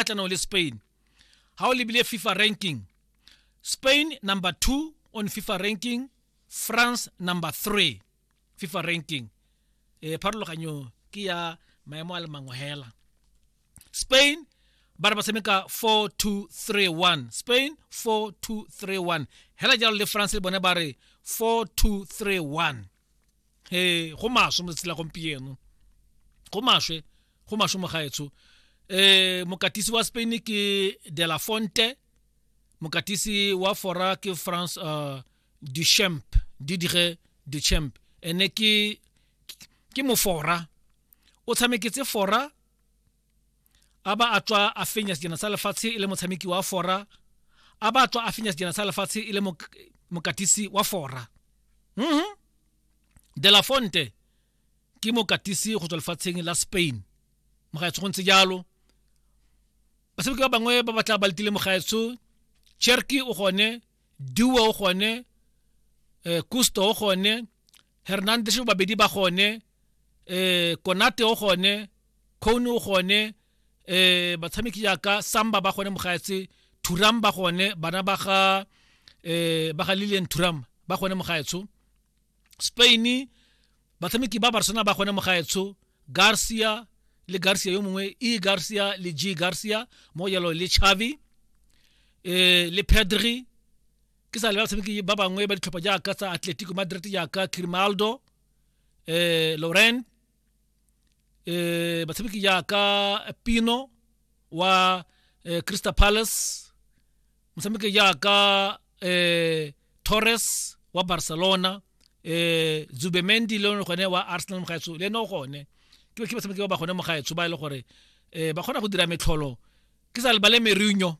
kgatlhanong le spain ga o lebile fifa ranking spain number two on fifa ranking france number three fifa ranking eh, pharologanyo ke ya maemo a le mangwe hela spain ba re ba tshameka 4231 spain 4231 hela jalo le france le bone ba re 4231 eh go maswe mo tsela gompieno go maswe go maswe mo gaetsho eh mokatisi wa Spain ke De La Fonte mokatisi wa fora ke France uh, Duchamp Didier Duchamp ene ke ke mofora o tshameketse fora a ba a tswa a fenya sejana sa lefatshe e le motshameki wa fora a ba a tswa a fenya sejana sa lefatshe e le mokatisi wa fora mm de la fonte ke mokatisi go tswa lefatsheng la spain mogaetsho go ntse jalo batshameki ba bangwe ba batla ba letile mogaetsho cherky o gone duo o gone eh, kusto o gone hernandez babedi ba gone eh konate o gone cone o gone eh batshameki jaaka samba ba gone mogaetse thuram ba gone bana ba ga eh ba ga lilian thuram ba gone mogaetsho spain batshameki ba barcelona ba gone mogaetsho garcia le garcia yo mongwe e garcia le g garcia mo jalo le chavi eh le pedri ke sa le batshameki ba bangwe ba ditlhopha jaaka tsa atletico madrid jaaka crimaldo eh, Lorraine eh, batshameki jaaka Pino wa eh, Crystal Palace motshameki jaaka eh, Torres wa Barcelona eh Zubemendi le yone gone wa Arsenal mo gaetsho le no gone ke ke batshameki ba ba gone mo gaetsho ba ile e gore eh ba kgona go dira metlholo ke sa lebale Mourinho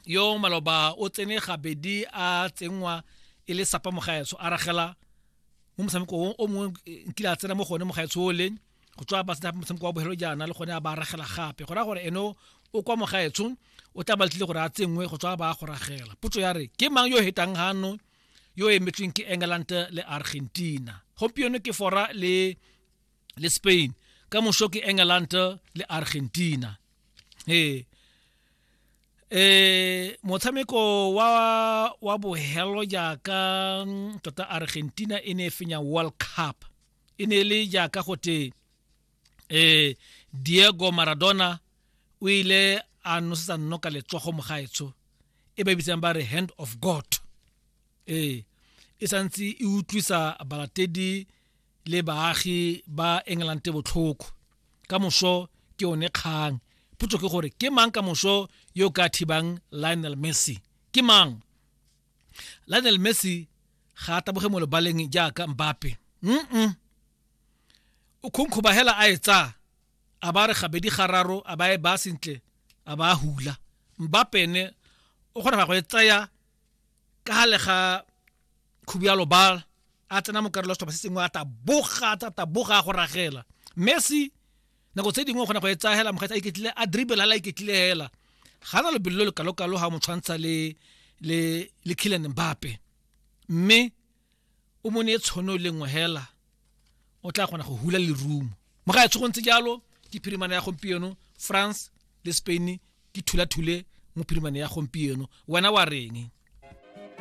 yo maloba o tsene gabedi a tsenngwa e le sapa mo gaetsho a ragela mo motshameko o o mongwe eh, nkile a tsena mo gone mo gaetshole go tswa ba sena motshameko wa bogelo jaana le gone a ba ragela gape go raya gore eno o kwa mo gaetsho o tla ba tlile gore a tsenngwe go tswa ba go ragela potso ya re ke mang yo o hetang gano yo o emetsweng ke england le argentina gompieno ke fora le le spain ka moso ke england le argentina ee eh motshameko wa wa bohelo jaaka mm, tota argentina e ne e fenya world cup e ne e le jaaka gote eh diego maradona o ile a nosetsa nnoka letsogo mo gaetsho e ba bitsang ba re hand of god ee e santse e utlwisa balatedi le baagi ba England botlhoko ka moso ke one kgang potso ke gore ke mang ka moso yo ka thibang Lionel Messi ke mang Lionel Messi ga a taboge mo lebaleng jaaka Mbappe mm o khonkhoba hela a e tsa a ba re gabedi gararo a ba e ba sentle a ba hula Mbappe ene o kgona go e tsaya ka gale ga khubialo ba a tsena mo karolo setlhopha se sengwe a taboga a taboga go ragela messi nako tse dingwe o kgona go e tsaya hela mokgweetsa a iketlile a dribble a la iketlile hela ga na lebelo le kalo-kalo ga mo tshwantsha le le le Kylian Mbappe mme o mo ne tshono le nngwe hela o tla kgona go hula lerumo mo ga e tshogontse jalo ke phirimana ya gompieno france le spain ke thulathule mo phirimane ya gompieno wena wa reng